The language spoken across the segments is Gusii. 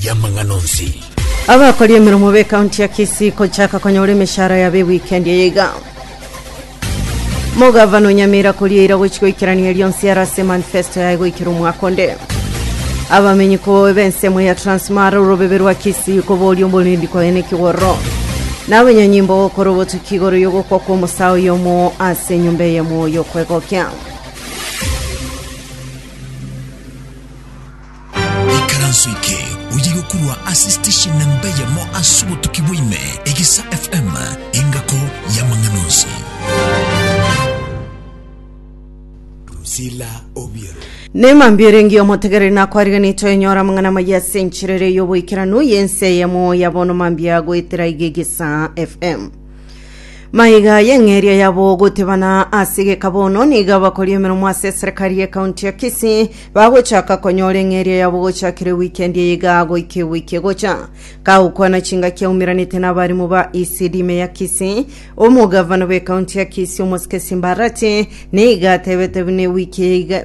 y'amang'ana onsi. Abakori emeremo b'ekaunti ya Kisii kochaka konyora emeshara yabo ewikendi eye iga. Mogavana o Nyamira koria eira gochia goikerania rionsi ere ase manifesto yaye goikera omwaka onde. Abamenyi ko b'ensemo ya Transmara orobebe rwa Kisii koboria omorendi koyena ekigoro. Na abanyanyimbo gokora obotuki igoro y'ogokwa kw'omosaa oyomo ase enyomba eye moyo kwegokya. Ikaranso eke oyigokorwa ase station na mbeyemo ase obotuki bwaime, Egesa FM, engako y'amang'ana onsi. Drusilla Obiero. Neema mbio erenge omotegereri nakwariganetwe enyora amang'ana amaya ase enchera ere y'oboikeranu y'ense eyemo ya bono mambia goetera iga egesa fm Maiga y'eng'eria yabo gotebana ase egeka bono niga bakori emeromo ase eserekari ye kaunti ya Kisii bagochaka konyora eng'eria yabo gochakire wikendi eye iga goika ewiki egocha. Kagokwana chingaki aumeranete n'abarimu ba ECD ime ya Kisii, omogavana bw'ekaunti ya Kisii Omosike Simbarati niga atebete buna ewiki eye iga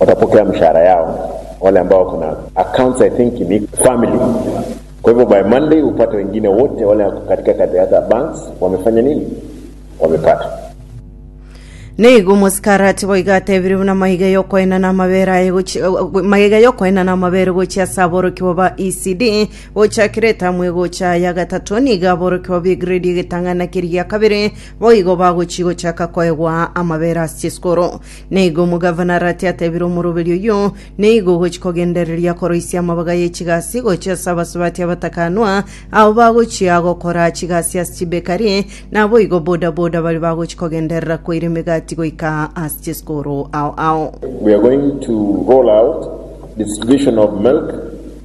Otapokea emeshahara yao ole ambao kuna accounts I think ni family kwa hivyo by Monday upate wengine wote ole ako katika the other banks wamefanya nini wamepata. Nigo omosikarati boigo atebire buna magega y'okoenana amabere aye gochia magega y'okoenana amabere gochia ase aborokigwa ba ECD gochakire etamu egocha ya gatato nigo aborokigwa b'egrade egetang'ana keria giakabere boigo bagochia gochaka koegwa amabere ase chisukuru Na igo omogavana Arati ateebire omoroberi oyio, Nigo ogochia kogendereria koroisia amabaga ye chigasi gochia ase abasubati abatakanwa, abo bagochia gokora chigasi ase chibekari, naboigo bodaboda baria bagochia kogenderera koira emegati goika ase chisukuru ao ao. We are going to roll out distribution of milk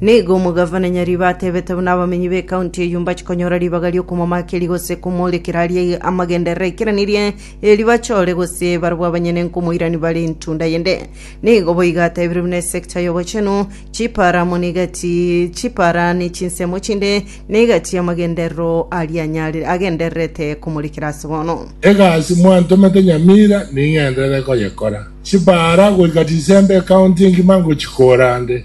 Nigo omogavana nyariba atebete buna abamenyi b'ekaunti eyio mbachikonyora ribaga ri'okomomakeria gose komorekera aria amagenderero aikeranerie, erio bachore gose barabwo abanyene nkomoirani bare entunda yende. Nigo boigo atebire buna esekta y'obochenu, chipara amo negati chipara ne chinsemo chinde, negati y'amagenderero aria anyare agendererete komorekera ase bono. Egasi mwantomete nyamira ning'enderere koyekora. Chipara goika chisembe ekaunti engima ngochikora nde.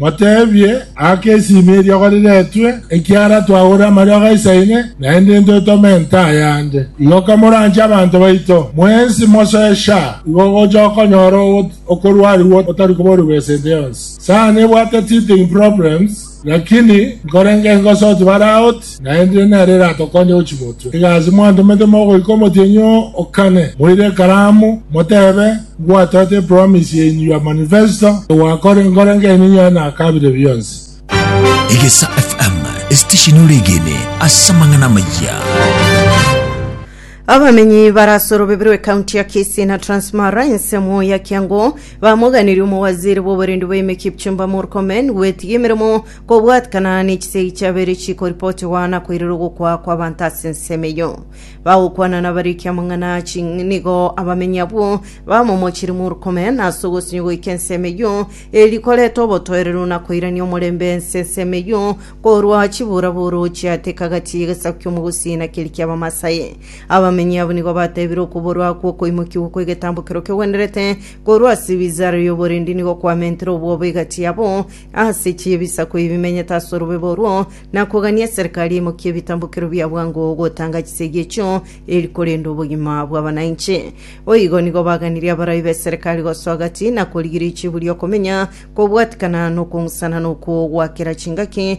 Moteebie, Aka esimi eria goriretwe, ekiara twagore amariogo aisaine, naende intwe totome ento ayande. Igo kamoranche abanto baito, mwensi mosoe sha, igo gocha okonyora okorwarigwa otari koborigwa esente yonsi. Sana nebwate teething problems, lakini nkorenge ngosoti bare out. Naende nere eratokonye gochia motwe. Egasi mwantomete mogoika omotienyi oo okane, moire ekaramu, motebe, Ngwatoete epromise yaino ya manifesto, egwakora enkoro enkeene enyare na kabire bionsi. Egesa FM, esitesheni ore egene ase amang'ana amayia. Abamenyi barase orobebe rwe kaunti ya Kisii na Transmara ense emo ya Kiangu bamoganirie omowaziri bw'oborindi bwa ime Kipchumba Murkomen gwetiga emeremo Kobwatikana nechisegi chiabeire chikoripotigwa na koirera ogokwa kw'abanto ase ensemo eyio. Bagokwana nabariki amang'ana aya chi nigo abamenyi abwo bamomochire Murkome, na ase ogosinywa goika ensemo eyio, eri koreta obotoereru na koirania omorembe ense ensemo eyio korwa chiburaburo chiateka gati y'egesaku ki'omogusi na keri ki'Abamasai. Abamenyi abwo nigo batebire okuborwa akwo okoimokigwa kw'egetambokero kegwenerete korwa ase ebizaara y'oborendi nigo kwamentire obwoba egati yabo ase chibisaku ebi bimenyete ase orobebe orwo, na kogania eserikari emokie ebitambokero bia bwango gotanga chisegi echio, eri korenda obogima bw'abanainche. Boigo nigo baganirie abarai b'eserikari gosoa gati na korigiria echibu ri'okomenya, kobwatikana na okong'usana na okwo gwa kera chingaki,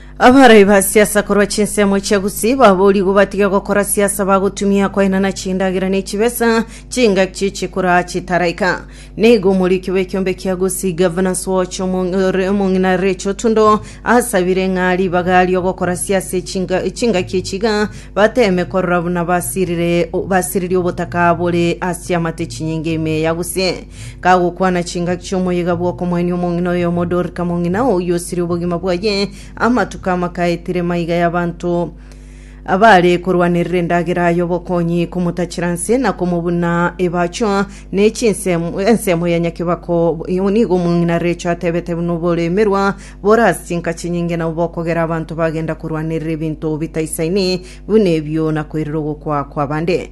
Abarai ba siasa korwa chinsemo chia Gusii baboorigwe batige gokora siasa bagotumia koenana chindagera ne chibesa chingaki chikoraa chitaraika. Nigo omoriki bw'ekiombe kia Gusii Governors Watch Omong'ore omong'ina Rachel Otundo asabire ng'a ribaga aria ogokora siasa echinga- chingaki echi iga bateeme korora buna basirire basiririe obotaka bore ase amate chinyinga ime ya Gusii. kagokwana chingaki chi'omoyega bw'okomoenia omong'ina oyomo Dorika mong'ina oyio osirie obogima bwaye. Amatuko amakaetire maiga y'abanto abaare korwanerera endagera aye obokonyi, komotachera nse na komobuna ebacho ne chinsemo ensemo ya nyakebako. Nigo omong'ina Recho atebete buna oboremerwa bore ase chinka chinyinge nabo bokogera abanto bagenda korwanerera ebinto bitaisaini buna ebio na koirera ogokwa kw'abande.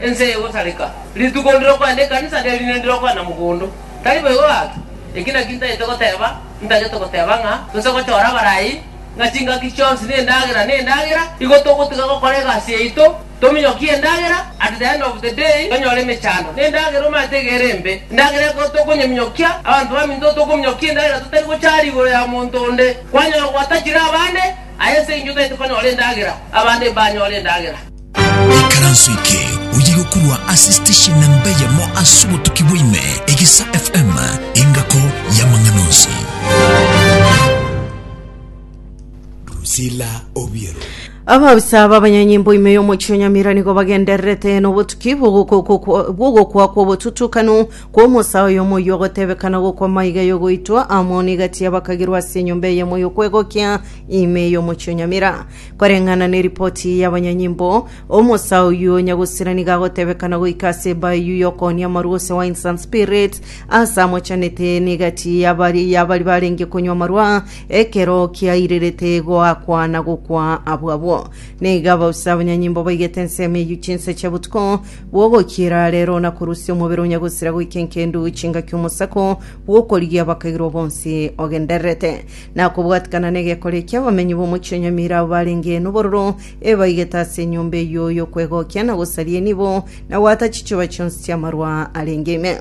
Ense eye egosareka, rituko ndire okogenda ekanisa, ne rinde ndire okogenda mogondo. Tari boigo gaki? Eki nakio ntagete goteba, ntagete goteba ng'a tose gochora abarai, ng'a chingaki chionsi nendagera, nendagera, igo togotiga gokora egasi yaito, tominyokie endagera, at the end of the day tonyore emechando, nendagera omanyete iga ere embe, endagera ekero tokonyeminyokia, abanto baminto tokominyokia endagera totari gochara igoro ya monto onde, kwanyora gwatachire abande, aye ense engiya otagete konyora endagera, abande mbanyore endagera. Ekaranso eke oye gokorwa ase station namba eyemo ase obotuki bwaime, Egisa FM, engako y'amang'ana onsi. Drusilla Obiero. Abaabisa b'abanyanyimbo ime y'omochie o Nyamira nigo bagendererete n'obotuki bw'ogoko- bw'ogokwa kw'obotutukanu kw'omosa oyomo oyio ogotebekana gokwa maiga y'ogoitwa amo n'egati y'abakagirwa ase enyomba eyemo y'okwegokia ime y'omochie o Nyamira. Koreng'ana neripoti y'abanyanyimbo, omosa oyio nyagusira nigo agotebekana goika ase eba eyio y'okoonia amarwa ose Wines and Spirits, ase amochanete n'egati y'abari y'abari barenge konywa amarwa, ekero kiairirete goakwa na gokwa abwo abwo. Nigo abausa abanyanyimbo baigete ensemo eyio chinsa chia botuko bw'ogokiira rero na korusia omobere onyagusira goika enkendu chingaki omosako bw'okorigia abakairwa bonsi ogendererete. na kobwatikana n'egekore ki'abamenyi b'omochie o Nyamira abwo barenge nobororo, ebaigete ase enyomba eyio y'okwegokia na gosaria enibo, na goata chichoba chionsi chi'amarwa arenge ime.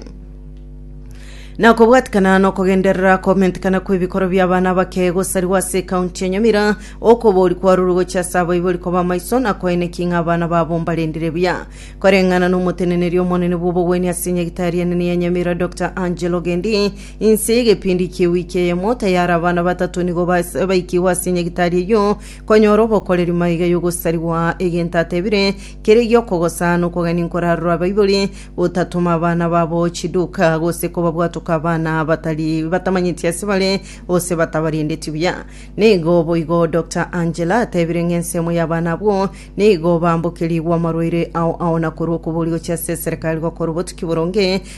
Na kobwatikana nokogenderera komentekana kw'ebikoro bi'abana abake gosarigwa ase ekaunti ya Nyamira, okobori kwarure gochia ase abaibori koba amaiso na koeneki ng'a abana babo mbarendire buya. Koreng'ana n'omoteneneri omonene bw'obogwenia ase Nyagitari enene ya Nyamira Doctor Angel Ogendi, Inse y'egepindi kia ewiki eyemo tayari abana batato nigo bas- baikigwa ase nyagitari eyio konyora obokoreri maiga y'ogosarigwa, egento atebire, Kere gi'okogosa nokogania nkorarora Baibori, gotatoma abana babo chiduka, gose kobabwatoka abana batari batamanyeti ase bare, gose batabarendeti buya. Nigo boigo Doctor Angela atebire ng'a ensemo y'abana abwo nigo baambokerigwe amarwaire ao ao na korwa okobori gochia ase eserekari gokora obotuki boronge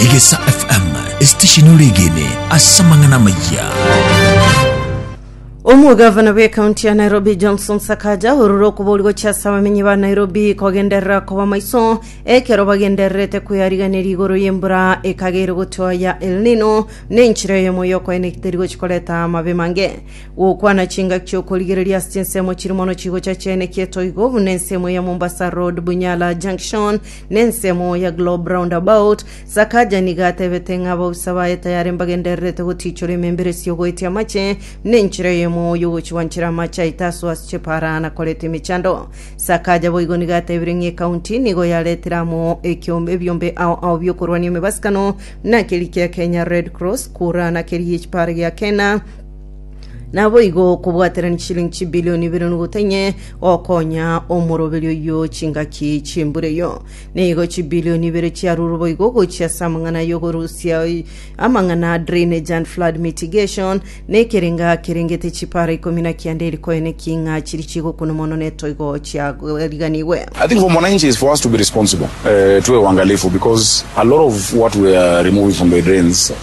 Egesa FM, esitesheni oregene ase amang'ana amayia. Omogavana bw'ekaunti ya Nairobi Johnson Sakaja orure okuboorigwa chiase abamenyi ba Nairobi kogenderera koba maiso ekero bagendererete kweyariganeria igoro y'embura ekageire gotua ya El Nino na enchera eyemo y'okoena eteri gochi koreta amabe mange gokwana chingaki chi'okorigereria ase chinsemo chiri mono chigocha chiaene kietoigo buna ensemo ya Mombasa Road Bunyala Junction Nensemo ya Globe Roundabout, Sakaja nigo atebete ng'a abausa baye tayare mbagendererete gotiichora emembere esia ogoetia amache, na enchera eyemo y'ogochwanchera amache aito asoa ase chipara na koreta emechando. Sakaja boigo nigo atebire ng'a ekaunti nigo yaretire amo ekiombe ebiombe ao ao bi'okorwania emebasikano, na keria kia Kenya Red Cross, Kura, na keria gi'echipara gia Kena, Naboigo okobwaterania chisilingi chibilioni ibere nogutwa inye gokonya omoroberi oyio chingaki chi'embura eyio. Nigo chibilioni ibere chiarurwe boigo gochia ase amang'ana y'okorusia amang'ana a drainage and flood mitigation, na ekerenga kerengete chipara ikomi na kianda eri konya neking'a chiria chigokuna mono na etoigo chiariganigwe. I think for mwananchi is for us to be responsible, uh, tuwe uangalifu because a lot of what we are removing from the drains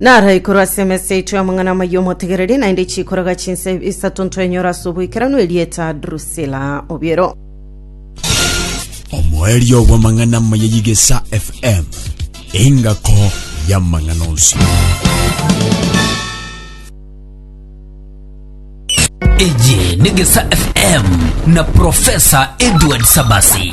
Naro ikorwa ase emesa yaito y'amang'ana amaya omotegereri, naende chikoraga chinse isato ntwenyora ase oboikeranu erieta Drusila obiero. omoerio bw'amang'ana amaya y'igesa fm engako y'amang'ana onsi Iji ni Gesa FM na Profesa Edward Sabasi.